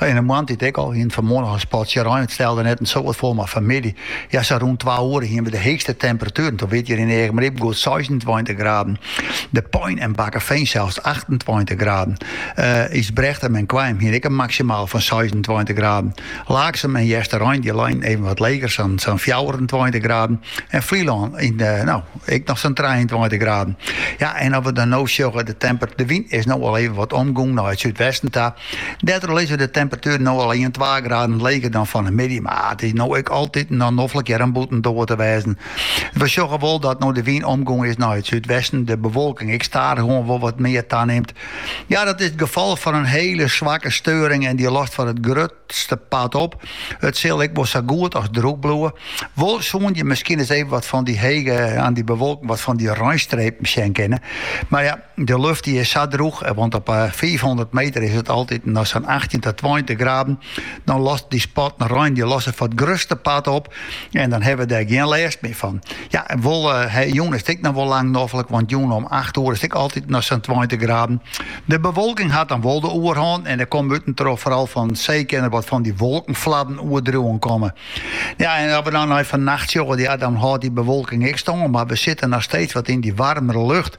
Yn 'e moarntiid ek al, eh fanmoarn in spatsje rein, it stelde net in soad foar, mar fanmiddei, ja sa rûn twa oere, hiene we de heechste temperatueren. Doe wie 't hjir yn Eagmaryp goed seisentweintich graden, De Pein en Bakkefean sels achtentweintich graden. Ysbrechtum en Koarnjum hiene ek in maksimaal fan seisentweintich graden. Laaksum en Easterein dy leinen even wat leger, sa'n fjouwerentweintich graden. En Flylân no ek noch sa'n trijeentweintich graden. Ja, en as we dan no sjogge, de wyn is no al even wat omgong nei it súdwesten ta. Dêrtroch lizze de temperatueren no al ien twa graden leger dan fan de middei, mar it is no ek altyd noch noflik hear om bûtendoar te wêzen. We sjogge wol dat no de wyn omgong is nei it súdwesten de bewolking ek stadichoan wol wat mear tanimt. Ja, dat is it gefal fan in hiele swakke steuring en dy lost foar it grutste part op. It sil ek wol sa goed as drûch bliuwe. Wol soene je miskien ris even wat fan dy hege oan dy bewolking wat fan dy reinstrepen sjen kinne. Mar ja, De luft dy is sa drûch, eh, want op fiifhûndert meter is it altyd noch sa'n achttjin ta tweintich graden. Dan lost dy spatten rein dy losse foar it grutste part op en dan hawwe we dêr gjin lêst mear fan. Ja, en wol eh, jûn is it ek noch wol lang noflik, want jûn om acht oer is it ek altyd noch sa'n tweintich graden. De bewolking hat dan wol de oerhân en der komme utentroch foaral fan see kinne wat fan dy wolkenfladden oerdriuwen komme. Ja, en as we dan nei fannacht sjogge, ja, dan hâldt dy bewolking ek stân, mar we sitte noch steeds wat yn dy waarmere lucht.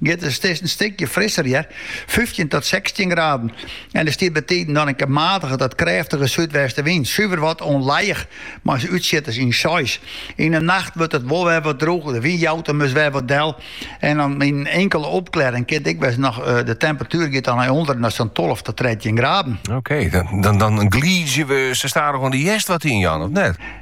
giet, it is in stikje frisser hear, fyftjin tot sechstjin graden, en der stiet bytiden dan in kear matige tot krêftige súdwestewyn, suver wat ûnlijich, mei útsjitters yn seis. Yn 'e nacht wurdt it wol wer wat drûger, de wyn jout him dus wer wat del en dan yn in inkele opklearring kin 't ek wêze noch de temperatuer giet dan nei ûnderen nei sa'n tolve tot trettjin graden. Oké, dan glydzje we sa stadichoan de hjerst wat yn, Jan, of net?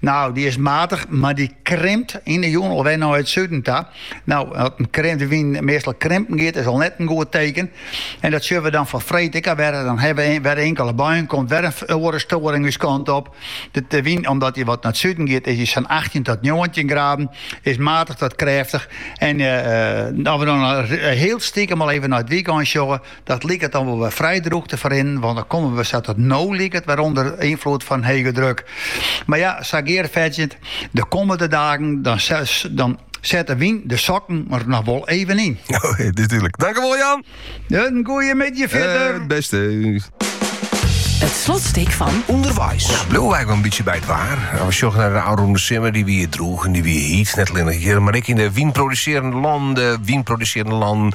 No, dy is matich, mar dy krimpt yn de jûn alwer nei it suden ta. No, at de wyn meastal krimpen giet, is al net in goed teken. En dat sjoch we dan foar freed ek al wer. Dan hawwe we wer inkele buien, komt wer in oare storing ús kant op. De wyn, omdat dy wat nei it suden giet, is dy sa'n achttjin tot njoggentjin graden, is matich tot krêftich. En as we dan hiel stikem al even nei it wykein sjogge, Dat liket dan wol wer frij drûch te ferrinnen, want dan komme we sa't it no liket wer ûnder ynfloed fan hege druk. Mar ja, sa gearfetsjend, de kommende dagen dan, dan set de wyn de sokken der noch wol even yn. O, natuerlik. Dankewol, Jan. In goeie middei fierder. Eh, bêst. It slotstuk fan Underweis. No, bliuw einliks in bytsje by it waar. At we sjogge nei de ôfrûne simmer, dy wie droech en dy wie hyt, net allinne hjir, mar ek yn de wynprodusearjende lannen, wynprodusearjende lannen,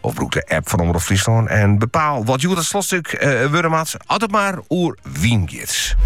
Of brûk de app fan Omrop Fryslân en bepaal wat hjoed it slotstuk eh, wurde moat, as it mar oer wyn giet.